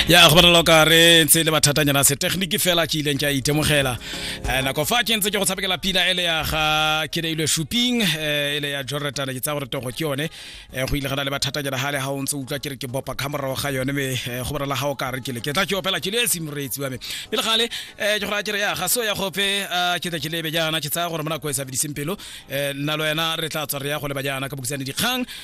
ya go bonala ka re ntse le bathatanyana se technique fela ke ileng ke a itemogela Eh, nako fa ke ntse ke go tshabekela pina ele ya ga ke reilwe shopping eh, ele ya jorretana ke tsa gore togo ke yone Eh, go ile gana le bathatanyana gale ga o ntse o utlwa ke re ke bopa ka morago ga yone me eh, go bonala ga o ka re ke le ke tla ke opela ke le e semoreetsi wa me pele gale eh, ke go raya ke re ya ga so ya gope ah, ke tla ke lebe jaana ke tsaya gore mo nako e sa bediseng pelo eh, nna le wena re tla tswa re ya go leba jaana ka bokisane dikgang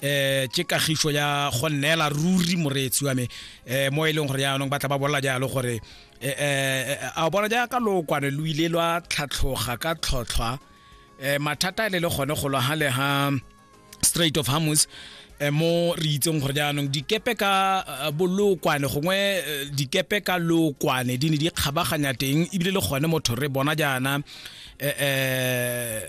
eh ke kagiso ya go neela ruri moreetsi wa me eh mo e leng gore yaanong ba tla ba bolela jalo gore eh, eh, eh a bona jaaka lookwane lo ile lwa tlhatlhoga ka tlhotlhwa eh mathata e le le gone go lwa ha le ha straight of hamus eh, mo re itseng gore jaanong dikepe ka eh, bolokwane gongwe eh, dikepe ka lokwane di ne di kgabaganya teng ebile le gone motho re bona jaana eh, eh,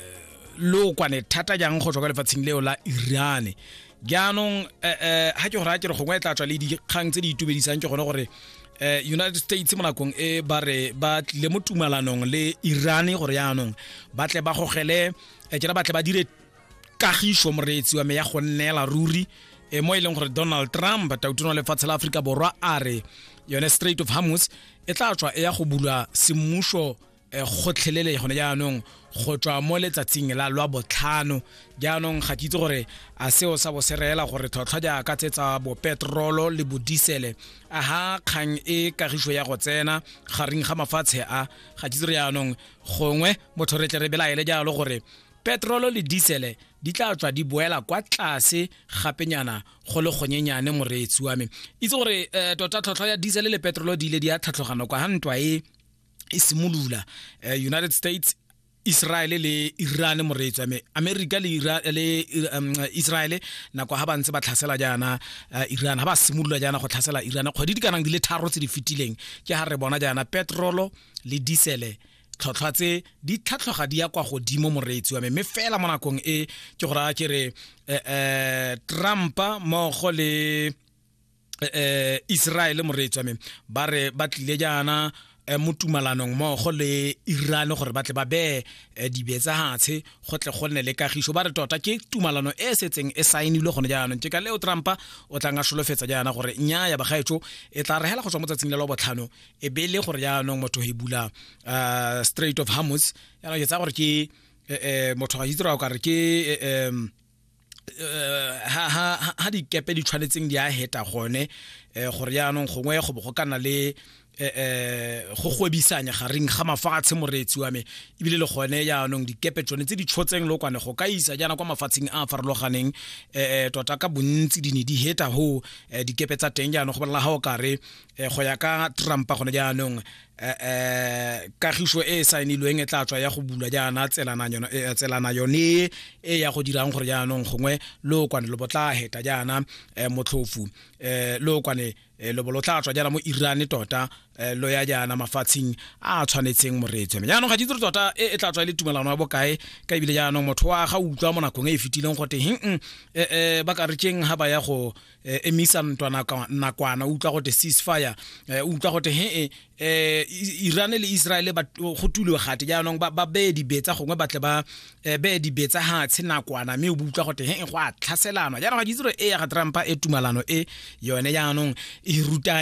lookwane thata jang go tswa kwa lefatsheng leo la irane jaanong ga eh, eh, ke gore a ke re gongwe e tla tswa le dikgang tse di itumedisang ke gone gore eh, united states mo nakong e ba re ba tlile mo tumalanong le irane gore yaanong ba tle ba gogele kera ba tle ba dire kagiso moreetsi wa me ya go nnela ruri e mo e leng gore donald trump tautono wa lefatshe la aforika borwa a re yone straight of hamus e tla tswa e ya go bulwa semmuso Eh, gotlhelele gone jaanong go tswa mo letsatsing la lwa botlhano jaanong ga ke itse gore a seo sa bo se reela gore tlhotlhwa jaaka tse tsa bopetrolo le bodisele a ha kgang e kagiso ya go tsena gareng ga mafatshe a ga ke itse re jaanong gongwe motho re tle re belaele jalo gore petrolo le disele di tla tswa di boela kwa tlase gapenyana go le gonyenyane moreetsi wa me itse gore um tota tlhotlhwa ya disele le petrolo di ile di ya tlhatlhogano kwa ga ntwa e e simolola eh, united states Israel le Iran moreetswa me America le Iran le um, Israel nako ha ba ntse ba tlhasela jaana uh, Iran ha ba simolola jaana go tlhasela Iran kgwedi di kanang di le tharo tse di fetileng ke ha re bona jaana petrol le diesel tlhotlhwa tse di tlhatlhoga di ya kwa godimo moreetsi wa me mme fela mo nakong e ke go raya ke re eh, eh, Trump mogo le eh, eh Israel moreetswa me ba re ba tlile jaana eh, mo tumalanong mmogo le Iran gore ba tle ba bee eh, dibe tsa hatshe go tle go nne le kagiso ba re tota ke tumalano e setseng e saenilwe gone jaanong ke ka leo Trumpa o tla nga solofetsa jaana gore nya ya bagaetso e tla regela go tswa mo tsatsing le lo botlhano e be le gore jaanong motho e bula eh, Strait of Hormuz yana ke tsa gore ke eh, motho ga itse ra o ka re ke eh, eh, ha dikepe di tshwanetseng di a heta gone eh, gore yaanong gongwe go bo go kana le eh, eh go gwebisanya gareng ga mafatshe moreetsi wa me ebile le gone yaanong dikepe tsone tse di tshotseng lokwane go ka isa jaana kwa mafatsheng a a farologaneng um tota ka bontsi di ne di heta ho dikepe tsa teng jaanong go bolela ga o kare go ya ka trumpa gone jaanong eh, eh kagiso e e saenilweng e tla tswa ya go bulwa jaana eh, tselana yone e ya go dirang gore jaanong gongwe lookwane lo botla heta jaana eh, motlhofu eh, lookwane eh, lobo lo tla tswa jaana mo irane tota eh, lo ya jaana mafatsheng a a tshwanetseng moreetswe jaanong ga di dire tota e, e tla tswa e le tumelano ya bokae ka ebile jaanong motho wa ga utlwa mo nakong e e fetileng gote heng eh, eh, ba ka retšeng ga ba ya go eh, emisa ntwa nakwana utlwa gote ceasefire eh, utlwa gote he eh, iran le israel go tulwe gate jaanong ba beye dibetsa gongwe batle ba beye dibetsa gatshe nakwana mme o utlwa gote he go a tlhaselanwa jaanong ga ke itse gore e ya ga trumpa e tumalano e yone jaanong e ruta